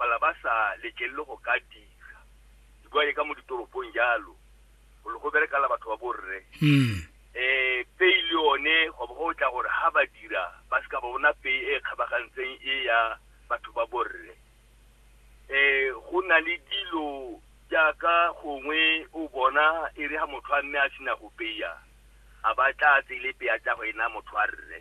pala ba sa letlelele go ka dira dikwae ka mo ditoropong jalo go le go berekala batho ba borre um pei le yone go bo go tla gore ga ba dira ba se ka ba bona pei e e kgabagantseng e ya batho ba borre um go na le dilo jaaka gongwe o bona e re ga motho a mme a sena go peya a ba tla tsele peya tsa go ena motho a rre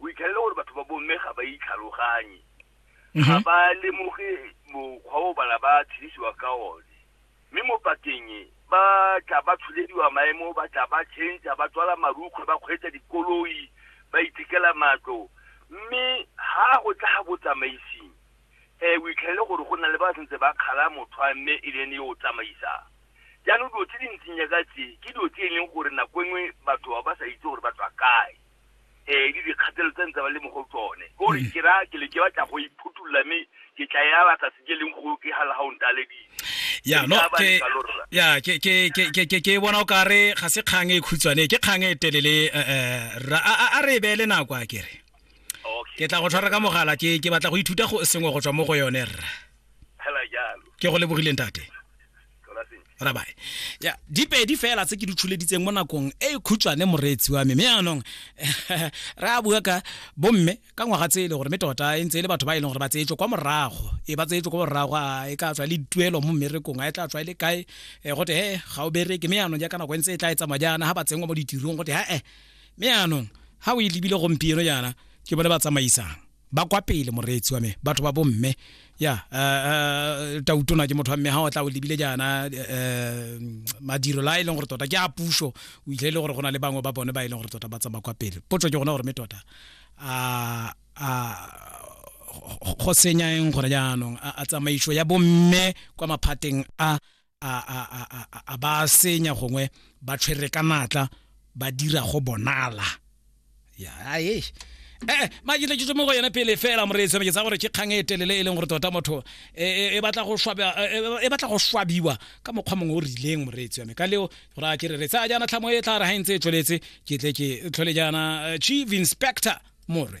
o itlhelele gore batho ba bomme ga ba itlhaloganye ga mm-hmm. ba lemoge mokgwa o bana ba tshedisiwa ka one mme mo pakeng e ba tla ba tsholediwa maemo ba tla ba change ba tswala marukgwe ba kgweetsa dikoloi ba ithekela matlo mme ha go tla ga botsamaising um o itlhelele gore go na le ba sentse ba kgala motho a mme e lene yo o tsamaisang jaanong dilo tse di ntseng yaka tse ke dilo tse e leng gore nako e nngwe batho ba ba sa itse gore ba tswa kae um le dikgatelo tse ntse ba le mo go tsone kore mm. ke ra ke le ke batla go iphutolola mme ke tla ya batla se ke leng go ke ga lega o ntaledile ya no ke ya ke ke ke ke ke bona o kare ga se kgang e khutshwane ke kgang e telele eh, eh, a re e beele nako a kere ke tla go tshwara ka mogala ke ke batla go ithuta go sengwe go tswa mo go yone rra ke go lebogileng tate rabae ya dipedi fela tse ke di tshuleditseng mo nakong e e khutshwane moreetsi wa me mme anong re a bua ka bomme ka ngwaga tse e le gore mme tota e ntse e le batho ba e leng gore ba tseetswe kwa morago e ba tseetswe kwa morago a e ka tswa le dituelo mo mmerekong a e tla tswa e le kae e gote he ga o bereke mme anong jaaka nako e ntse e tla e tsamaya jaana ga ba tsenngwa mo ditirong gote ha e mme anong ga o e lebile gompieno jaana ke bone ba tsamaisang ba kwa pele moreetsi wa me batho ba bomme ya eh, eh, tautona ke motho wa mme ga o tla o lebile jaana eh, madiro la e leng gore tota ke a puso o ile e le gore go na le bangwe ba bone ba e leng gore tota ba tsamaya kwa pele potso ke gona gore me tota a go senyang gore jaanong a tsamaiso ya bomme kwa maphateng a a ba senya gongwe ba tshwere ka natla ba dira go bonala ya ee ee ma ke tletse mo go yone pele fela moreetsi ke tsa gore ke kgang e telele e leng gore tota motho e batla go swaba e batla go swabiwa ka mokgwa mongwe o rileng moreetsi wa me ka leo gore a ke re re tsaya jaana tlhamo e tla re ha ntse e tsweletse ke tle ke tlhole jaana chief inspector more